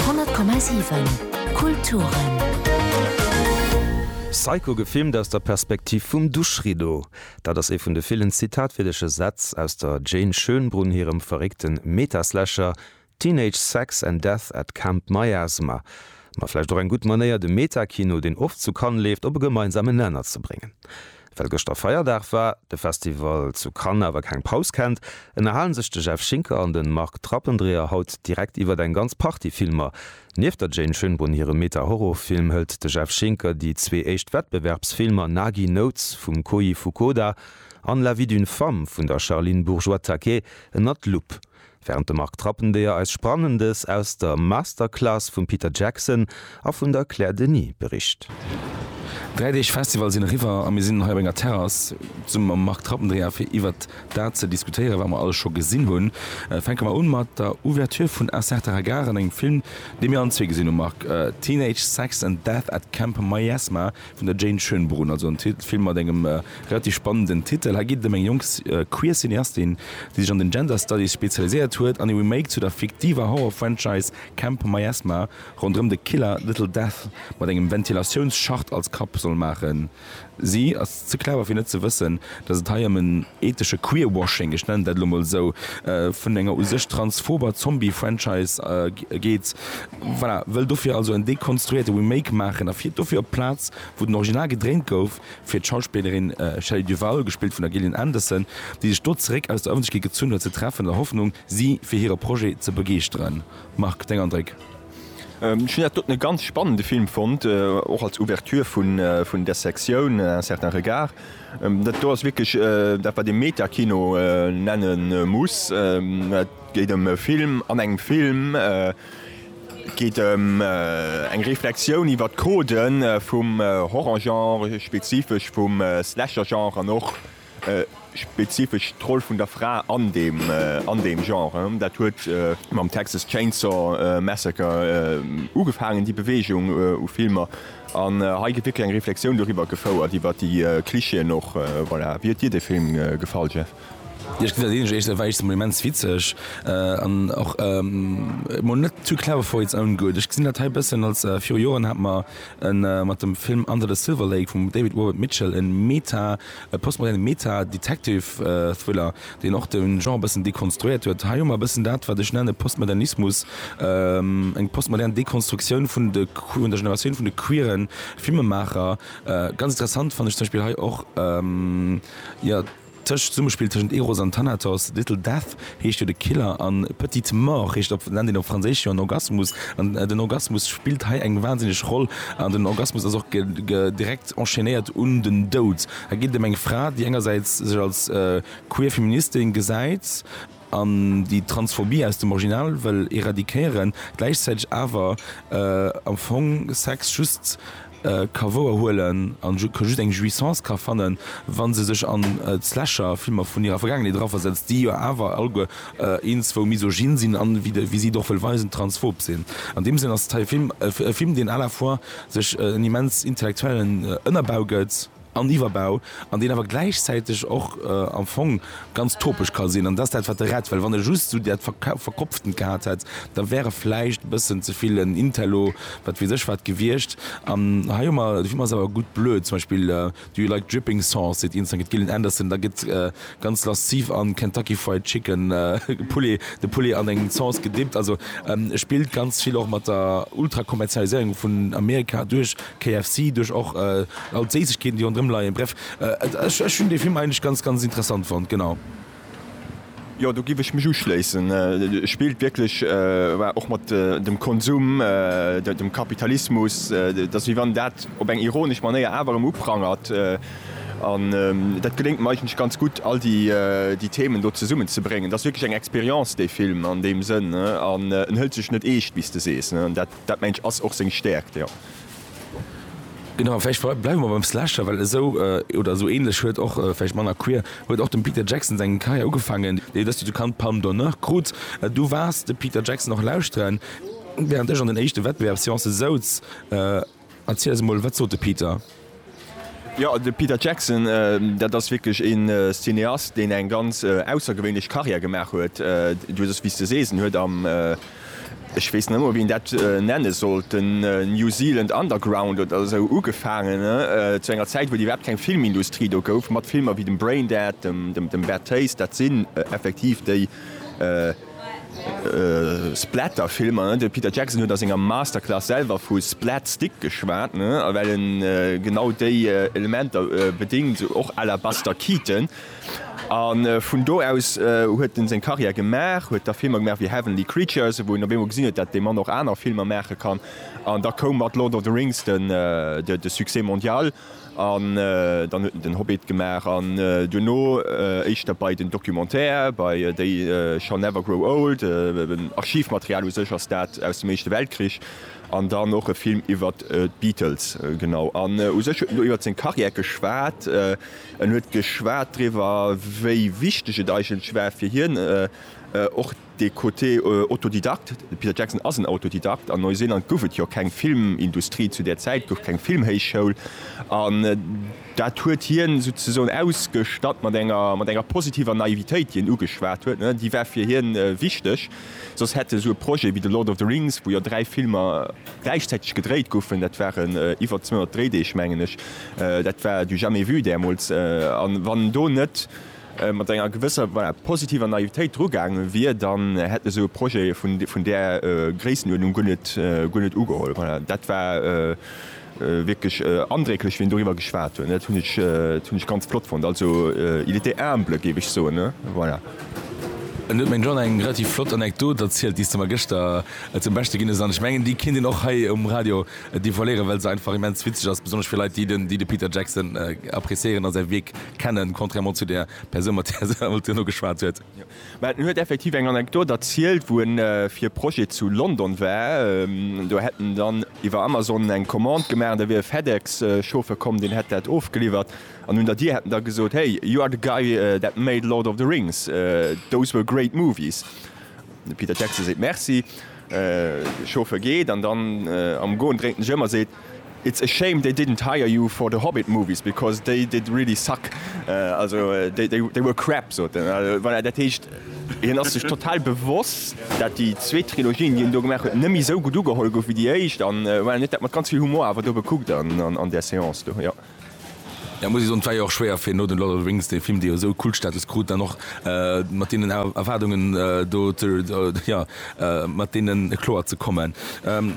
100,7 Kulturen. Psycho gefilmt aus der Perspektiv vum Duschrideau. Dat ass ee vun de villen zitatwierdeche Sätz aus der Jane Schönbrunn hirem verréckte Meta-Slasher Teenage Sex and Death at Camp Miasma. Ma vläicht och eng gutt Manéier, de Meta-Kino, deen oft zu Cannes leeft, op e gemeinsamen Nenner ze bréngen. Well gëschter Feierdag war, de Festival zu Cannes awer keng Paus kennt, ënnerhalen sech de Jeff Schinker an den Marc Trappendreher haut direkt iwwert eng ganz Partie Filmer. Nieft der Jane Schönbrunn hirem Meta-Horrorfilm hëlt de Jeff Schinker déi zwee éischt Wettbewerbsfilmer Nagi Notes vum Koji Fukuda an La vie d'une femme vun der Charline Bourgeois-Taquet ënnert d'Lupp. Während de Marc Trappendeyer eis Sprannendes aus der Masterclass vum Peter Jackson a vun der Claire Denis bericht. Dräi Deeg Festival sinn eriwwer a mir sinn hei op enger Terrass zesumme mam Marc Trappendeyer fir iwwert dat ze diskutéieren, wat mer alles scho gesinn hunn. Fänke mer un mat der Ouverture vun Un certain regard an engem Film, dee mir allen zwee gesinn hunn, Marc, Teenage Sex and Death at Camp Miasma, Vun der Jane Schönbrunn, also en Film mat engem relativ spannenden Titel. Hei geet et ëm eng jonk queer Cineastin, déi sech an den Gender Studies spezialiséiert huet an e Remake zu der fiktiver Horror-Franchise Camp Miasma ronderëm de Killer Little Death mat engem Ventilatiounsschacht als Kapp soll maachen. Si ass ze clever fir net ze wëssen, datt et hei ëm en ethesche Queerwashing, ech nennen dat elo mol esou, vun enger u sech transphober Zombie-Franchise geet. Voilà, wëll dofir also en dekonstruéierte Remake maachen a fiert dofir op d'Plaz, wou den Original gedréint gouf, fir d'Schauspillerin Shelley Duvall, gespillt vun der Gillian Anderson, déi sech do zeréck aus der Ëffentlechkeet gezunn huet, ze treffen, an der Hoffnung, si fir hire Projet ze begeeschteren. Marc, deng Andréck? Ech hunn dat doten e ganz spannende Film fonnt, och als Ouverture vun där Sektioun Un certain regard. Dat do ass wierklech dat, wat ee Meta-Kino nenne muss. Et geet ëm e Film an engem Film. Et geet ëm eng Reflexioun iwwer d'Codë vum Horrorgenre, spezifesch vum Slashergenre an och spezifesch d'Roll vun der Fra an deem Genre. Dat huet mam Texas Chainsaw Massacre ugefaangen, déi Beweegung u Filmer. An hei gëtt wierklech eng Reflexioun doriwwer gefouert, iwwer déi Clichéen och. Voilà. Wéi huet dir de Film gefall, Jeff? Jo ech ginn dat een, ech war eréischt emol immens witzeg an och emol net too clever for its own good. Ech gesinn dat hei e bëssen als, viru Joren hat mer e mat dem Film Under the Silver Lake vum David Robert Mitchell e Meta, e postmoderne Meta-Detective-Thriller, deen och de Genre e bëssen dekonstruéiert huet. Hei hu mer e bëssen dat, wat ech nenne Postmodernismus, eng postmodern Dekonstruktioun vun de, vun der Generatioun vun de queere Filmemaacher. Ganz interessant fannen ech zum Beispill hei och, jo, Tëscht Summespill tëschent Eros an Thanatos, Little Death heescht jo de Killer an Petite Mort heescht op Lendin op Franséisch jo en Orgasmus an den Orgasmus spillt hei eng wansinneg Roll an den Orgasmus ass och direkt enchaînéiert un den Doud. Et geet em eng Fra, déi engersäits sech als queer Feministin gesäit, an déi Transphobie aus dem Original wëll eradiquéieren, gläichzäiteg awer am Fong Sex just ka wouer huelen a just eng Jouissance ka fannen, wa se sech an d'Slasher-Filmer vun hirer Vergaangenheet eraversetzt, déi jo awer alleguer eenzewo misogyn sinn a, wéi si et och wëll weisen, transphob sinn. An deem Sënn ass et hei e Film, deen à la fois sech en immens intellektuellen Ënnerbau gëtt, an Iwwerbau, an deen awer gläichzäiteg och am Fong ganz topesch ka sinn, an dat ass dat, wat e rett. Well wann e just esou dat Verkopftent gehat hätt, da wär e vläicht e bëssen ze vill en Intello, wat weess ech wat, gewiescht. An hei hu mer, dofir hu mer se awer gutt blöd, zum Beispill Do you like dripping sauce? seet een, dann gëtt Gillian Anderson, da gëtt ganz lasziv a Kentucky Fried Chicken Poulet, de Poulet an eng Sauce gedippt. Also e spillt ganz vill och mat der Ultrakommerzialiséierung vun Amerika duerch KFC duerch och all d'Séissegkeeten déi ronderëm leien. Bref, ech hunn dee Film eigentlech ganz ganz interessant fonnt, genau. Jo, do giff ech mech uschléissen. Spillt wierklech och mat dem Konsum, dem Kapitalismus. Et ass wéi wann dat op eng ironesch Manéier awer erëm uprangert. An dat geléngt em eigentlech ganz gutt all déi Themen do zesummen ze bréngen. Et ass wierklech eng Expérience dee Film an deem Sënn an en hëlt sech net eescht wéi s de sees. Dat mengt ech ass och seng Stärkt, jo. Genau, vläicht bleiwe mer beim Slasher, well esou oder esou ähnlech huet och, vläicht manner queer, huet och dem Peter Jackson seng Karriär ugefaangen. Déi huet dëst Joer d'Count Palme d'Honneur krut. Du waars de Peter Jackson och lauschteren, wärend ech an den éischte Wettbewerbsseancë souz. Erziel eis emol, wat sot de Peter? Jo, de Peter Jackson, dat ass wierklech ee Cineast, deen eng ganz aussergewéinlech Carrière gemaach huet. Du hues, wéi s de sees, en huet am, ech weess net emol, wéi een dat nenne sollt, den New Zealand Underground oder esou ugefaangen, zu enger Zäit, wou et iwwerhaapt keng Filmindustrie do gouf, mat Filmer wéi dem Braindead, dem Bad Taste. Dat sinn effektiv déi. Splatter-Filmer, ne? De Peter Jackson huet a senger Masterclass selwer vu Splat-Stick geschwat, ne? Well en genau déi Elementer bedéngt, och à la Buster Keaton. A vun do aus huet en seng Karriär gemaach, huet da Filmer gemaach wéi Heavenly Creatures, wou een op eemol gesinn huet, dat dee Mann och aner Filmer maache kann. An da koum mat Lord of the Rings de Succès mondial. An dann huet en den Hobbit gemaach an duerno éischter bei den Documentaire, bei They Shall Never Grow Old, Archivmaterial u sech ass dat aus dem Éischte Weltkrich, an dann och e Film iwwer d'Beatles. Genau. An u sech huet en do iwwer seng Karriär geschwat. En huet geschwat driwwer, wéi wichteg et eigentlech war fir hien och, Dee Côté Autodidakt, de Peter Jackson ass en Autodidakt. An Neuseeland gouf et jo keng Filmindustrie, zu där Zäit gouf keng Filmhéichschoul. An dat huet hien souzesoen ausgestatt mat enger, mat enger positiver Naivitéit, déi en ugeschwat huet. Déi war fir hien wichteg, soss hätt esou e Projet wéi The Lord of the Rings, wou jo dräi Filmer gläichzäiteg gedréit goufen, dat waren iwwer 200 Dréideeg, mengen ech, dat war du jamais vu däermools. A wann en do net mat enger gewësser, voilà, positiver Naivitéit dru gaange wier, dann hätt esou e Projet vun där Gréissenuerdnung guer net, guer net ugeholl. Voilà, dat war wierklech andrécklech, wéi en doriwwer geschwat huet. Dat hunn ech, dat hunn ech ganz flott fonnt. Also, il était humble, géif ech soen. Voilà. An du huet meng Jeanne eng relativ flott Anekdot erzielt, déi s de mer gëschter zum Beschte ginn hues. An ech mengen, déi kéint een och hei um Radio devoiléieren, well se einfach immens witzeg ass, besonnesch fir Leit, déi de Peter Jackson appréciéieren a säi Wierk. Kennen, contrairement zu där Persoun, mat där se haut duerno geschwat huet. Mä en huet effektiv eng Anekdot erzielt, wou en fir e Projet zu London war. Do hätt en dann iwwer Amazon eng Commande gemaach an da wier e FedEx-Chauffeur komm, deen hätt dat ofgeliwwert. An un der Dier hätt en da gesot, Hey, you are the guy that made Lord of the Rings, those were great movies. De Peter Jackson seet Merci, de Chauffeur geet an dann am Goen dréint en sech ëm a seet, It's a shame they didn't hire you for the Hobbit movies because they did really suck, also they were crap sot en. Voilà, dat heescht, hien ass sech total bewosst, dat déi zweet Trilogie, déi en do gemaach huet, net méi esou gutt ugeholl gouf wéi déi éischt an voilà, hien huet dat mat ganz vill Humor awer do bekuckt an där Seance do, jo. Jo muss ech soen, et war jo och schwéier fir no den Lord of the Rings, dee Film dee jo esou Kultstatus krut, dann och mat deenen Erwaardungen do jo mat deenen kloer ze kommen.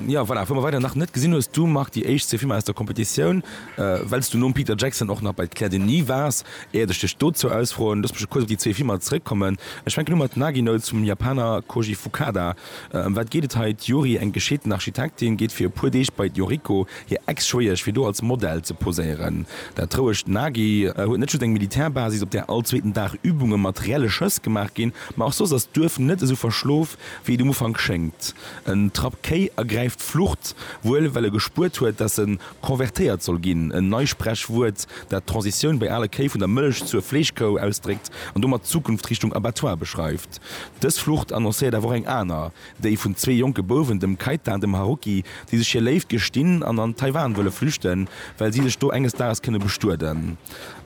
Jo voilà, wou mer weider nach net gesinn hues du Marc déi éischt zwee Filmer aus der Competitioun, well s du nom Peter Jackson och nach bei d'Claire Denis waars, éiert ech dech dozou ausfroen, looss mech kuerz op déi zwee Filmer zeréckkommen. Ech fänken u mat Nagino zum Japaner Koji Fukada. Ëm wat geet et hei? D'Yuri, eng gescheeten Architektin, geet fir e puer Deeg bei d'Yoriko, hir Ex-Schwéiesch, fir do als Model ze poséieren. Dat trouegt d'Nagi. Huet net just eng Militärbasis, op där all zweeten Dag Übunge mat reelle Schëss gemaach ginn, ma och soss ass d'Duerf net esou verschlof, wéi et um Ufank schéngt. En Trapp Kéi ergräift d'Flucht, wuel well e gespuert huet, dass en. Konvertéiert soll ginn, en Neisprechwuert, dat d'Transitioun bei ale Kéi vun der Mëllech zur Fleeschkou ausdréckt an domat d'Zukunft Richtung Abattoir beschreift. Dës Flucht annoncéiert awer och eng aner, déi vun zwee jonke Bouwen, dem Keita an dem Haruki, déi sech hir Léift gestinn an an Taiwan wëlle flüchten, well si sech do enges Dages kënne bestueden.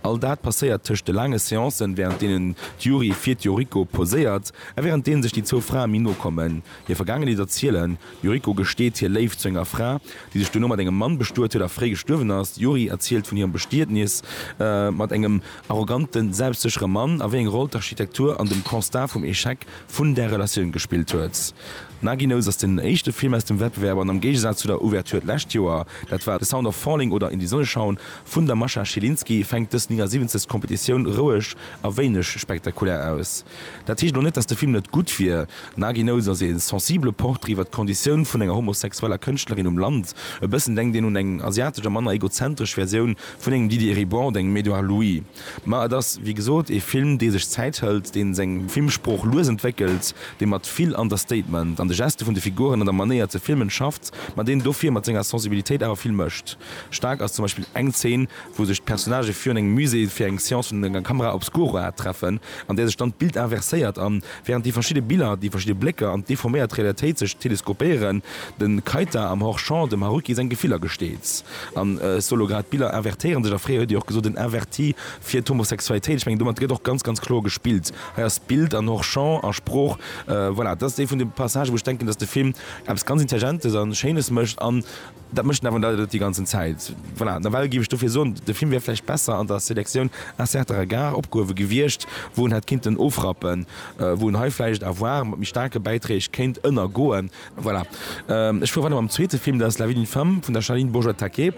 All dat passéiert tëscht de laange Seancen, wärend deenen d'Yuri fir d'Yoriko poséiert a wärend deene sech déi zwou Frae méi no kommen, hir Vergaangenheet erzielen D'Yuriko gesteet hir Léift zu enger Fra, déi sech duerno mat engem Mann bestuet huet a fréi gestuerwen ass. D'Yuri erzielt vun hirem Bestietnis mat engem arrogante, selbstséchere Mann a wéi eng Roll d'Architektur an dem Constat vum Echec vun där Relatioun gespillt huet. Nagy Nose ass den éischte Film aus dem Wettbewerb an am Géigesaz zu der Ouverture d'lescht Joer, dat war The Sound of Falling oder In die Sonne schauen vun der Mascha Schilinski, fänkt dës 79. Competitioun roueg a wéineg spektakulär aus. Dat heescht elo net, datt de Film net gutt wier. Nagi Notes ass ee sensibele Portrait iwwer d'Konditioun vun enger homosexueller Kënschtlerin um Land. E bëssen denkt een un eng asiatesch a manner egozentresch Versioun vun engem Didier Ribord, engem Edouard Louis. Ma et ass, wéi gesot, ee Film, dee sech Zäit hëlt, dee seng Filmsprooch lues entwéckelt, dee mat vill Understatement an de Geste vun de Figuren an der Manéier ze filmen schafft, ma deen dofir mat senger Sensibilitéit awer vill mécht. Staark ass zum Beispill eng Zeen, wou sech d'Personnagë virun engem Musée fir eng Seance vun enger Camera obscura treffen, an där sech dann d'Bild inverséiert an, während déi verschidde Biller, déi verschidde Blécker an d'deforméiert Realitéit sech teleskopéieren, de Keita am Hors-champ dem Haruki seng Gefiller gesteet. An solo grad d'Biller invertéiere sech, a fréier huet Dir och gesot, en Inverti fir d'Homosexualitéit. Ech mengen, domat gëtt och ganz, ganz kloer gespillt. Hei ass Bild an Hors-champ a Sprooch, voilà, dat ass ee vun de Passagen, wou ech denken, dass de Film eppes ganz Intelligentes a Schéines mécht an, Dat mécht en awer net déi ganzen Zäit. Voilà, nawell géif ech dofir soen, de Film wär vläicht besser an der Sélectioun Un certain regard opgehuewe gewiescht, wou en hätt kinnten ofrappen, wou en hei vläicht à voir mat méi staarke Bäiträg kéint ënnergoen. Voilà. Ech fuere weider mam zweete Film, dat ass La vie d'une femme vun der Charline Bourgeois-Taquet.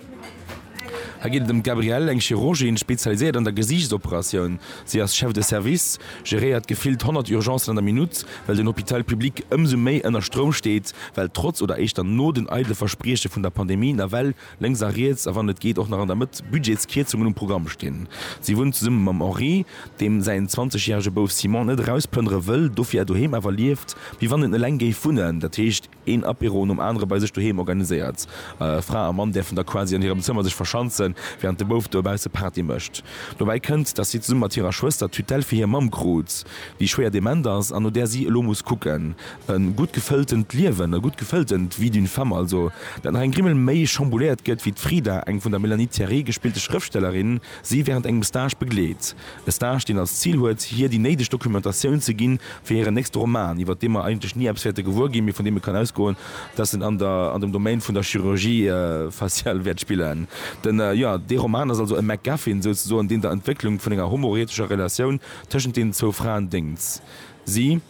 Hei geet et ëm d'Gabrielle, eng Chirurgin, spezialiséiert an der Gesiichtsoperatioun. Si ass Chef de service. geréiert gefillt 100 Urgencen an der Minutt, well den Hôpital public ëmsou méi ënner Stroum steet, well trotz oder éischter no den eidele Versprieche vun der Pandemie nawell lénks a riets, a wann et geet och nach an der Mëtt, Budgetskierzungen um Programm stinn. Si wunnt zesumme mam Henri, deem säin 20 järege Bouf Simon net erausplënnere wëll, dofir doheem awer lieft, wéi wann en eleng géif wunnen, dat heescht, Een Apéro nom anere bei sech doheem organiséiert. Fra a Mann däerfen da quasi an hirem Zëmmer sech verschanzen, wärend de Bouf dobausse Party mécht. Dobäi kënnt, dass si zesumme mat hirer Schwëster d'Tutelle fir hir Mamm krut, déi schwéier dement ass an no där si elo muss kucken. E gutt gefëlltent Liewen, e gutt gefëlltent Vie d'une femme also, dat nach eng Grimmel méi chambouléiert gëtt, wéi d'Frida, eng vun der Melanie Thierry gespillte Schrëftstellerin, Si während engem Stage begleet. E Stage, deen als Zil huet, hir déi néideg Dokumentatioun ze ginn fir hiren nächste Roman, iwwert dee mer eigentlech ni eppes wäerte gewuer ginn, mee vun deem ee kann ausgoen, dass en an der an dem Domaine vun der Chirurgie faciale wäert spillen. Den, jo, dee Roman ass also e MacGuffin souzesoen, deen der Entwécklung vun enger homoeretescher Relatioun tëschent deenen zwou Fraen déngt. Si,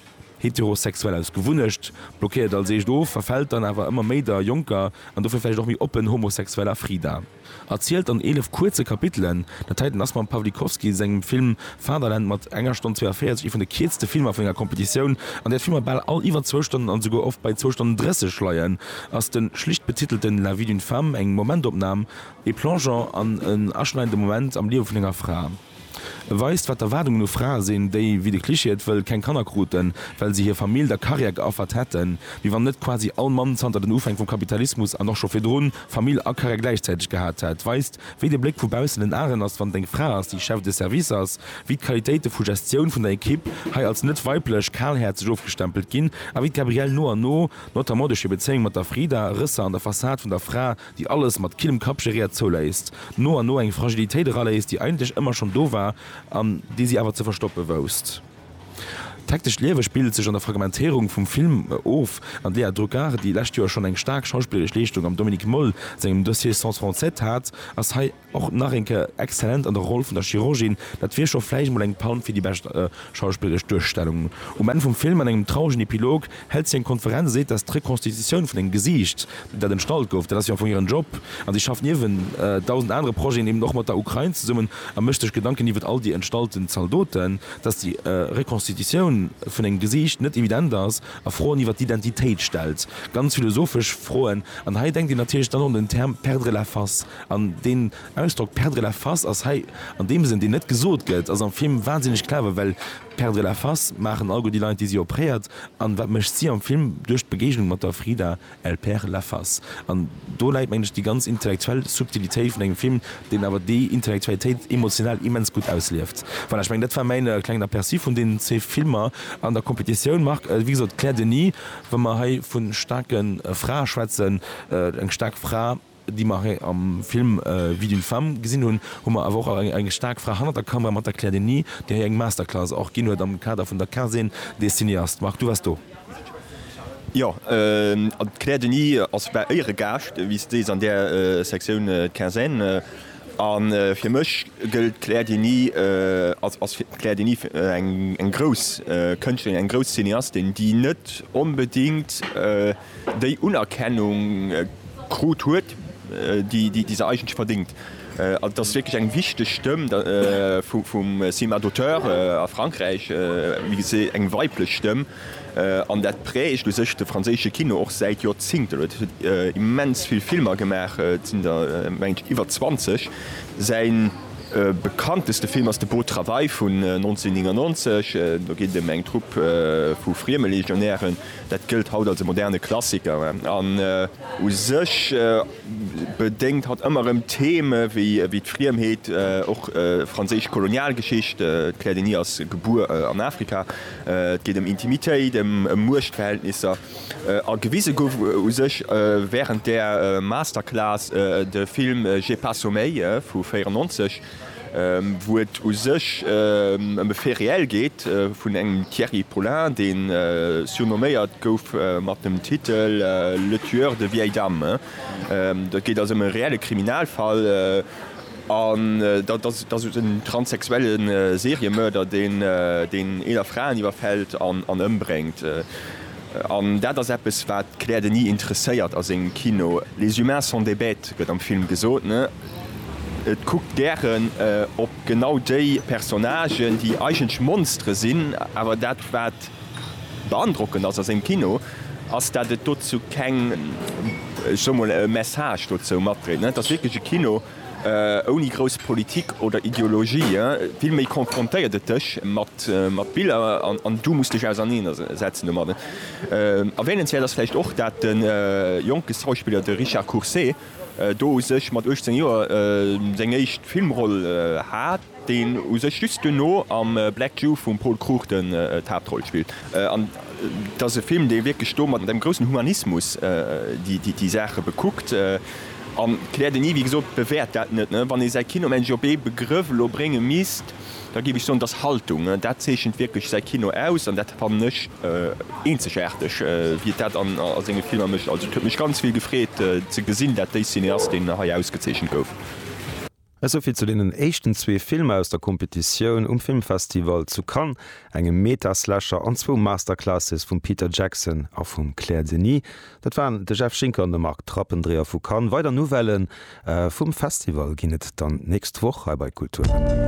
heterosexuell aus Gewunnecht, blockéiert als eescht of, verfält dann awer ëmmer méi der jonker an dofir vläicht och méi oppen homosexueller Frida. Erzielt an 11 kuerze Kapitelen. Dat heiten ass mam Pawlikowski sengem Film Fatherland mat enger Stonn 42 ee vun de kierzte Filmer vun enger Competitioun. An där d'Filmer bal all iwwer zwou Stonnen an esouguer oft bei zwou Stonnen 30 leien, ass de schlicht betitelten La vie d'une femme eng Momentopnam, ee Plongeon an en aschneidende Moment am Liewe vun enger Fra. E weist, wat d'Erwaardungen u Frae sinn, déi, wéi de Klischee et wëll, keng Kanner kruten, well se hir Famill der Karriär geaffert hätten, wéi wann net quasi all Mann zanter den Ufäng vum Kapitalismus an och scho virdrun Famill a Karriär gläichzäiteg gehat hätt, weist, wéi de Bléck vu baussen den Aeren ass, wann et eng Fra ass, déi Chef de Service ass, wéi d'Qualitéite vu Gestioun vun der Equipe hei als net weiblech, kalhäerzeg ofgestempelt ginn a wéi d'Gabrielle no an no, notamment duerch hir Bezéiung mat der Frida, Rësser an der Fassad vun der Fra déi alles mat killem Kapp geréiert zouléisst, no an no eng Fragilitéit eraléisst, déi eigentlech ëmmer schonn do war an déi si awer ze verstoppe wousst. D'hektescht Liewe spillt sech an der Fragmentéierung vum Film of an d'Léa Druckard, déi lescht Joer schonn eng staark schauspilleresch Leeschtung am Dominique Moll sengem Dossier Sens français hat, ass hei, Och nach eng Kéier exzellent an der Roll vun der Chirurgin, dat wier scho vläicht mol eng Palm fir déi bescht schauspilleresch Duerstellung. Um Enn vum Film, an engem trauregen Epilog, hält si eng Konferenz a seet, dass d'Rekonstitutioun vun engem Gesiicht, dat entstallt gouf, dat ass jo am Fong hiren Job. An si schafft niewent dausend anere Projeten eben och mat der Ukrain zesummen a mécht sech Gedanken iwwert all déi entstallten Zaldoten. Dass déi Rekonstitutioun vun engem Gesiicht net evident ass a Froen iwwert d'Identitéit stellt, ganz philosophesch Froen. An hei denkt een natierlech dann un den Term perdre la face. An deen Ausdrock perdre la face ass hei an deem Sënn, deen net gesot gëtt, ass am Film wahnsinneg clever, well perdre la face maachen all gutt déi Leit, déi si opréiert. An wat mécht si am Film? Duerch d'Begéignung mat der Frida, elle perd la face. An do läit, mengen ech, déi ganz intellektuell Subtilitéit vun engem Film, deen awer déi Intellektualitéit emotional immens gutt auslieft. Voilà, ech mengen, dat war mäin klengen Aperçu vun deenen zwee Filmer an der Competitioun. Marc, wéi gesot, Claire Denis, wa mer hei vu staarke Frae schwätzen, eng staark Fra, déi mer hei am Film Vie d'une femme gesinn hunn, hu mer awer och eng staark Fra hannert der Kamera mat der Claire Denis, déi hei eng Masterclass och ginn huet am Kader vun der Quinzaine des cinéastes. Marc, du waars do. Jo, an d'Claire Denis ass war Éieregaascht, wéi s de sees, an där Sektioun Quinzaine. A fir mech gëllt d'Claire Denis, ass ass d'Claire Denis eng grouss Kënschtlerin, eng grouss Cineastin, déi net onbedéngt, déi Unerkennung krut huet, déi se eigentlech verdéngt. Et ass wierklech eng wichteg Stëmm vum Cinéma d'auteur a Frankräich, wéi gesot eng weiblech Stëmm, an dat prägt u sech de franséische Kino och säit Joerzingten. Et huet immens vill Filmer gemaach, et sinn der, meng ech, iwwer 20. Säi bekannteste Film ass de Beau travail vun 1999, do geet et ëm eng Trupp vu frieme Legionären, Dat gëllt haut als e moderne Klassiker an u sech bedéngt hatt ëmmer erëm Theme wéi d'Friemheet, och franséisch Kolonialgeschicht, d'Claire Denis ass gebuer an Afrika, et geet ëm Intimitéit, ëm Muechtverhältnisser a gewise gouf u sech wärend där Masterclass de Film J'ai pas sommeil vu 94. wou et u sech ëm e Fait réel geet vun engem Thierry Paulin, dee surnomméiert gouf mat dem Titel Le tueur de vieilles dames. Et geet also ëm e reelle Kriminalfall, an dat ass en transsexuelle Seriemörder, deen eeler Fraen iwwerfält an ëmbréngt. An dat ass eppes, wat d'Claire Denis interesséiert a sengem Kino. Les humains sont des bêtes, gëtt am Film gesot. Et kuckt gären op genau déi Personnagen, déi eigentlech Monstere sinn. Awer dat, wat beandrockend ass a sengem Kino, ass, dat et dozou keng, ech soe mol, e Message dozou matdréit. Et ass wierklech e Kino, Ouni grouss Politik oder Ideologie, vill méi konfrontéiert et dech mat Biller an du muss dech auserneener setzen domadden. Erwähnenswäert ass vläicht och, dat de jonke Schauspiller, de Richard Courcé, do u sech mat 18 Joer seng éischt Filmroll hat. deen u sech just duerno am Black Jew vum Paul Cruchten d'Haaptroll spillt, an et ass e Film, dee wierklech do mat engem groussen Humanismus déi Saache bekuckt an kläert en iw. Wéi gesot, bewäert dat net. Wann ee säi Kino mengen ech op ee Begrëff elo brénge misst, da géif ech soen, et ass Haltung. Dat zeechent wierklech säi Kino aus an dat fannen ech eenzegaarteg, wéi et dat a senge Filmer mécht. Also et huet mech ganz vill gefreet ze gesinn, dat dee Cineast, deen hei ausgezeechent gouf. Esouvill zu deenen éischten zwee Filmer aus der Competitioun um Filmfestival zu Cannes, engem Meta-Slasher an zwou Masterclasses vum Peter Jackson a vum Claire Denis. Dat waren de Jeff Schinker an de Marc Trappendreher vu Cannes. Weider Nouvelle vum Festival ginn et dann d'nächst Woch hei bei Kulturelle.